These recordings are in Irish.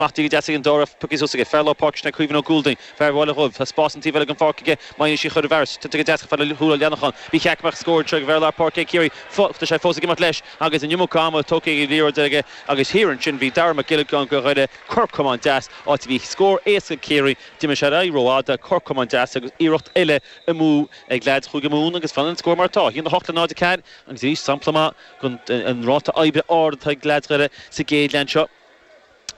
Maith Dí go deas ag an Dr. Pukki Zussige. Fear lár páirce sin é Caoimhín Ó Gúaldaigh, fear an Bhaile Dhuibh. Tá spás an taobh eile den pháirc aige má dhéanann sí chuile bheart. Tuitear go deas ag fear Thuar Leannacháin. Ba cheart go mbeadh scór deiridh ag fear lár páirce ag Ciarraí fós. Tá sé fós ag imeacht leis agus an iomarca ama tógtha as an liathróid aige. Agus thiar ansin bhí Darragh Mac Giolla Ghunna de Dhoire, cor camán deas, áit a bhí scór éasca ag Ciarraí. d'imigh sé ar aghaidh rófhada, cor camán deas agus iarracht eile amú ag leaids Chúige Mumhan agus fanann an scór mar atá, 1-8 le 0-4. Agus arís sampla maith den ráta oibre ard atá ag leaids Dhoire sa gcéad leath seo.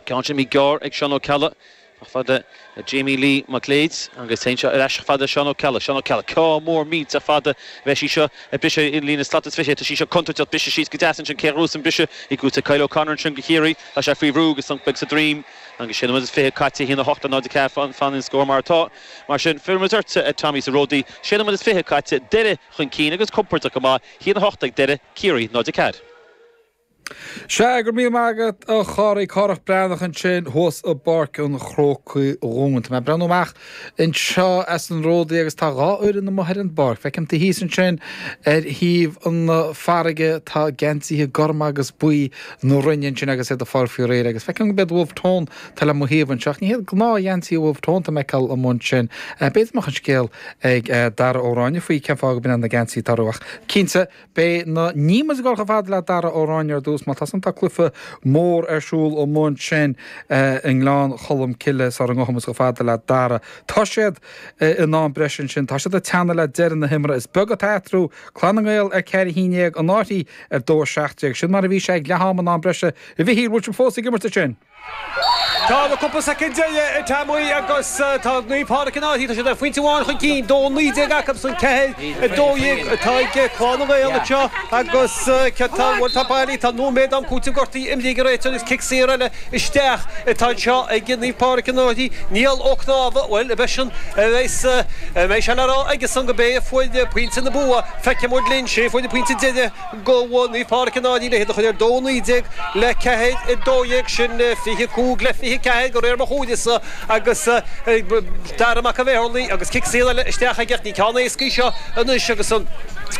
Ceann deas gearr ag Seán Ó Ceallaigh. chomh fada le Jamie Lee Mac Léid agus téann sé ar ais chomh fada le Seán Ó Ceallaigh. Seán Ó Ceallaigh, ceann mór millteach fada a bheidh sí seo a briseadh ar líne slat is fiche. Tá sí seo contúirteach briseadh síos go deas ansin cé ghrús an briseadh i gcúirt ag Kyle O'Connor ansin do Chiarraí. Tá sé faoi bhrú agus sonc beag sa droim agus sé nóiméad is fiche caite a haon a hocht a náid a ceathair fanann an scór mar atá. Mar sin fillimid ortsa a Tommy sa Ródaí. Sé nóiméad is fiche caite, Doire chun cinn agus compordach go maith, haon a hocht ag Doire, Ciarraí, náid a ceathair. Sea, go raibh míle maith agat, a Chárthaigh. Cárthach Breathnach ansin thuas i bPáirc an Chrócaigh dhúinn. Tá mé ag breathnú amach anseo as an ródaí agus tá dhá fhoireann amuigh ar an bpáirc. Feicim thíos ansin ar thaobh na farraige, tá geansaithe gorma agus buí na Rinne ansin agus iad ag fáil faoi réir. Agus feicim go mbeidh Wolfe Tone, tá le mo thaobh anseo, ach ní hiad gnáthgheansaithe Wolfe Tone atá mé ag fheiceáil amuigh ansin. Beidh an scéal ag Darragh Ó Ráinne faoi cén fáth a bhaineann leis na geansaithe atá orthu, ach cinnte, Beidh muid ag dul chomh fada le Darragh Ó Ráinne ar dtús mar tá an-chluiche mór ar siúl ansin i nGleann Cholm Cille sula ngabhfaimid chomh fada le Darragh. Tá siad in am breise ansin. Tá siad ag teannadh le deireadh na himeartha. Is beag atá eatarthu, Clann na nGael ar ceathair a haon déag, Annachuain ar dó a seacht déag. Sin mar a bhí sé ag leath-am in am breise a Pheadair. Bhfuil siad fós ag imirt ansin? Tá na cúpla soicind deiridh ag teacht amuigh agus tá Naomh Pádraig in áirithe, tá siad aon phointe amháin chun cinn, 2 19 acusan, ceathair, 12 atá ag Clann na nGael anseo agus cé tá bhuel tá Bailey tá nóiméad am cúitimh gortaithe imeartha faoi réir agus cic saor eile isteach atá anseo ag Naomh Pádraig in áirithe, Niall Ó Cnámha, bhuel a bheith sin a bheidh a mbeidh sé le rá aige-san gurb é a fuair pointe na bua, feicfidh muid linn, is é a fuair an pointe deiridh. do Naomh Pádraig an Fhaithche le hiad a chur ar dó, 19 le 4, 12 sin, 25 le 24 go réir mo chuntais-se, agus Dara Mac an Mheadharlaigh agus cic saor eile isteach aige ach ní ceann éasca í seo anois agus an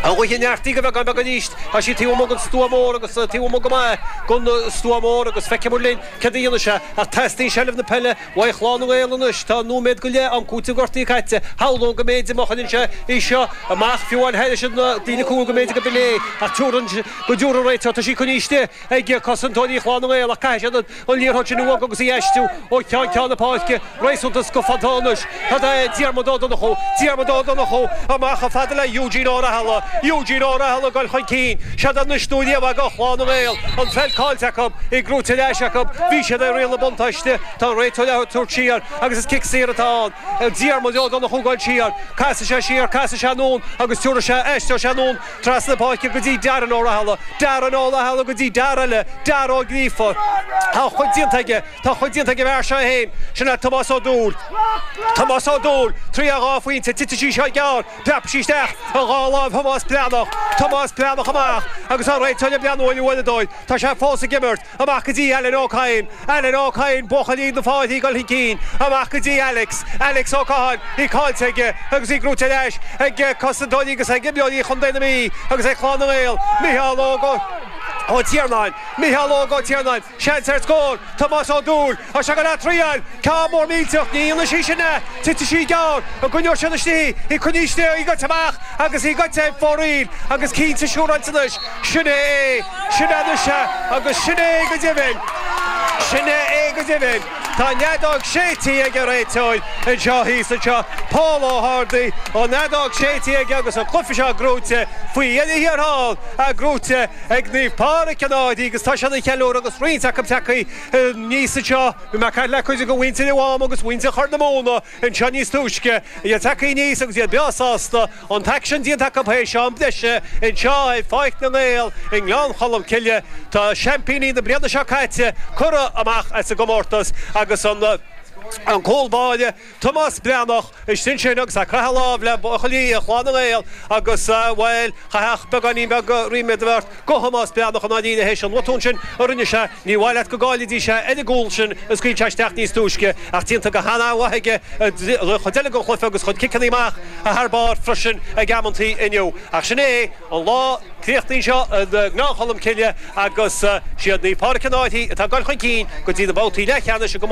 ghaoth a neartaigh go beagán beag arís. Tá sé taobh amuigh den stua mór agus taobh amuigh go maith den stua mór agus feicfimid linn céard a dhéanfaidh sé ach teastaíonn seilbh na peile Uaidh Chlann na nGael anois. Tá nóiméad go leith am cúitimh gortaithe caite. Shamhlóinn go mb'fhéidir má chuireann sé í seo amach, fiú amháin thairis an líne cúil, go mb'fhéidir gurb in é. Ach tabhair aird go dtabharfadh an réiteoir. Tá sí coinníste ag cosantóirí Chlann na nGael ach caithfidh siad an liathróid sin a bhogadh agus í a aistriú ó cheann ceann na páirce. Réasúnta sciobtha anois. Tá sí ag Diarmaid Ó Donnchú? Diarmaid Ó Donnchú, amach chomh fada le Eugene Ó Rathaille. Eugene Ó Rathaille ag dul chun cinn. Siad ar na stúidéaibh ag Clann na nGael. An pheil caillte acu. Í gnóite ar ais acu. Bhí siad ag riail na buntáiste. Tá an réiteoir á tabhairt siar agus is cic saor atá ann. Diarmaid Ó Donnchú ag dul siar. Casfaidh sé siar, casfaidh sé anonn agus tiúrfaidh sé, aistreoidh sé anonn trasna na páirce go dtí Darren Ó Rathaille. Darren Ó Rathaille go dtí an fear eile, Darragh Ó Gríofa. Tá a chuid déanta aige. Tá a chuid déanta ag an bhfear seo é fhéin, sin é Tomás Ó Dúill. Tomás Ó Dúill, triail dhá phointe, titeann sí seo gearr, preabann sí isteach i dhá láimh Thomáis Breathnach, Tomás Breathnach amach agus an réiteoir ag breathnú ar an uaireadóir, tá sé fós ag imirt, amach go dtí Alan Ó Cadhain, Alan Ó Cadhain, buachaillí na Fairche ag dul chun cinn, amach go dtí Alex, Alex Ó Catháin, í caillte aige agus í gnóite ar ais ag cosantóirí agus ag imreoirí Chontae na Mí agus ag Clann na nGael, Micheál Óg Ó Tiarnáin, Micheál Óg Ó Tiarnáin. Seans ar scór! Tomás Ó Dúill, Tá sé ag goil á traíáil! Ceann mór millteach, ní dhéanann sí sin é! Titfidh sí gearr, an gcoinneoidh siad istigh í, coinneoidh siad í goite amach agus í goite ar fóraoil agus cinnte siúráilte anois, sin é é, sin é anois é agus sin é é go deimhin, sin é é go deimhin. Tá an fheadóg séidte aige, réiteoir, anseo thíos anseo, Pól Ó hArdaí, an fheadóg séidte aige agus an cluife seo gnóite faoi dheireadh thiar thall, gnóite, ag Naomh Pádraig an Fhairche agus tá siad á cheiliúradh agus roinnt acu tagthaí aníos anseo. Bhí mé ag caint le cuid de mhuintir an Mháma agus muintir Chorr na Móna anseo níos túisce, iad tagthaí aníos agus iad breá sásta an t-aicsean déanta acu théis am breise anseo ar Pháirc na nGael i nGleann Cholm Cille. Tá seaimpíní na bliana seo caite curtha amach as an gcomórtas agus an cúl báire, Tomás Breathnach, istigh ansin agus ag croitheadh lámh le buachaillí Chlann na nGael agus, bhuel, chaithfeadh beagáinín beag ríméad a bheith ort do Thomás Breathnach i ndáiríre théis an bhotún sin a rinne sé. Níor mhaith leat go gcaillfidís é ar an gcúl sin a scaoil sé isteach níos túisce ach déanta go han-mhaith aige an chuid eile den chluiche agus a chuid ciceanna amach thar barr freisin ag amantaí inniu. Ach sin é an lá críochnaithe anseo i nGleann Cholm Cille agus 'siad Naomh Pádraig an Fhairche atá ag dul chun cinn go dtí na babhtaí leathcheannais i gComórtas